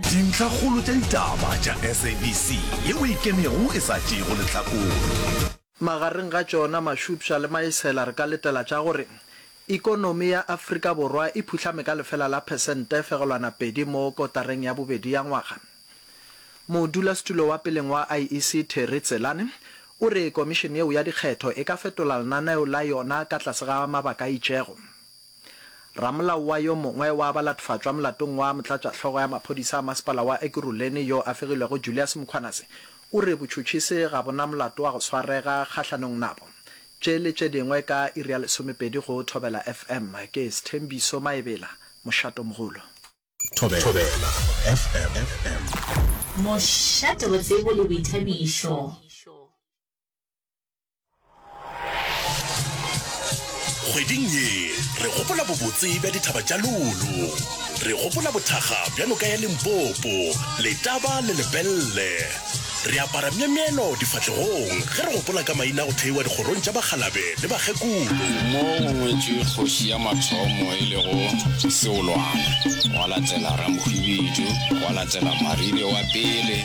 Dintlhakgolo tša ditaba tša SABC yeo e kenego e sa tšeego lehlakore. Magareng ga tšona Mashupša le Maesela re ka letela tša gore ikonomi ya Afrika Borwa e phuhlame ka lefela la phesente fegelwana pedi mo kotareng ya bobedi ya ngwaga. Modulasetulo wa peleng wa IEC Terry Tselane o re komišene yeo ya dikgetho e ka fetola lenaneo la yona ka tlase ga mabaka a itšego. Ramolao wa yo mongwe wa ba latofatšwa molatong wa motlatšahlogo ya maphodisa a masepala wa Ekurhuleni yo a fegilwego Julius Mkhwanase o re botšhotšhi se ga bo na molato wa go swarega kgahlanong nabo. Tše le tše dingwe ka iri ya lesomepedi go Thobela FM. Ke Sthembiso Maebela, Mošatomogolo. Thobela FM. Mošate botsebo le boithabišo. Kgweding ye, re gopola bobotse bja dithaba tša Lulu. Re gopola bothakga bja noka ya Limpopo, Letaba le Lepelle. Re apara myemyelo difahlegong ge re gopola ka maina a go theiwa dikgorong tša bakgalabe le bakgekolo. Mo go ngwetšwe kgoši ya mathomo e lego Seolwana, gwa latela Ramokgwibidu, gwa latela Maribe wa pele,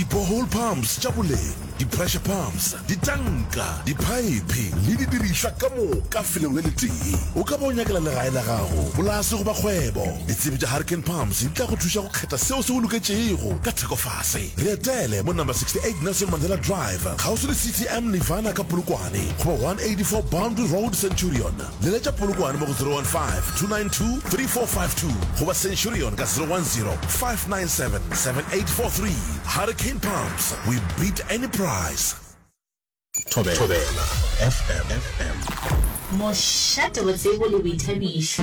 Di-borehole pumps tša boleng, di-pressure pumps, ditanka, diphaephe le didirišwa ka moka felong le letee. O ka ba o nyakela legae la gago, polase goba kgwebo. Ditsebi tša Hurricane Pumps di tla go thuša go kgetha seo se go loketšego ka thekofase. Re etele mo number 68 Nelson Mandela Drive, kgauswi le CTM Nirvana ka Polokwane, goba 184 Boundary Road, Centurion. Leletša Polokwane mo go 015-292-3452 goba Centurion ka 010-597-7843. Hurricane Pumps, we beat any price. Thobela FM. Mošate, botsebo le boithabišo.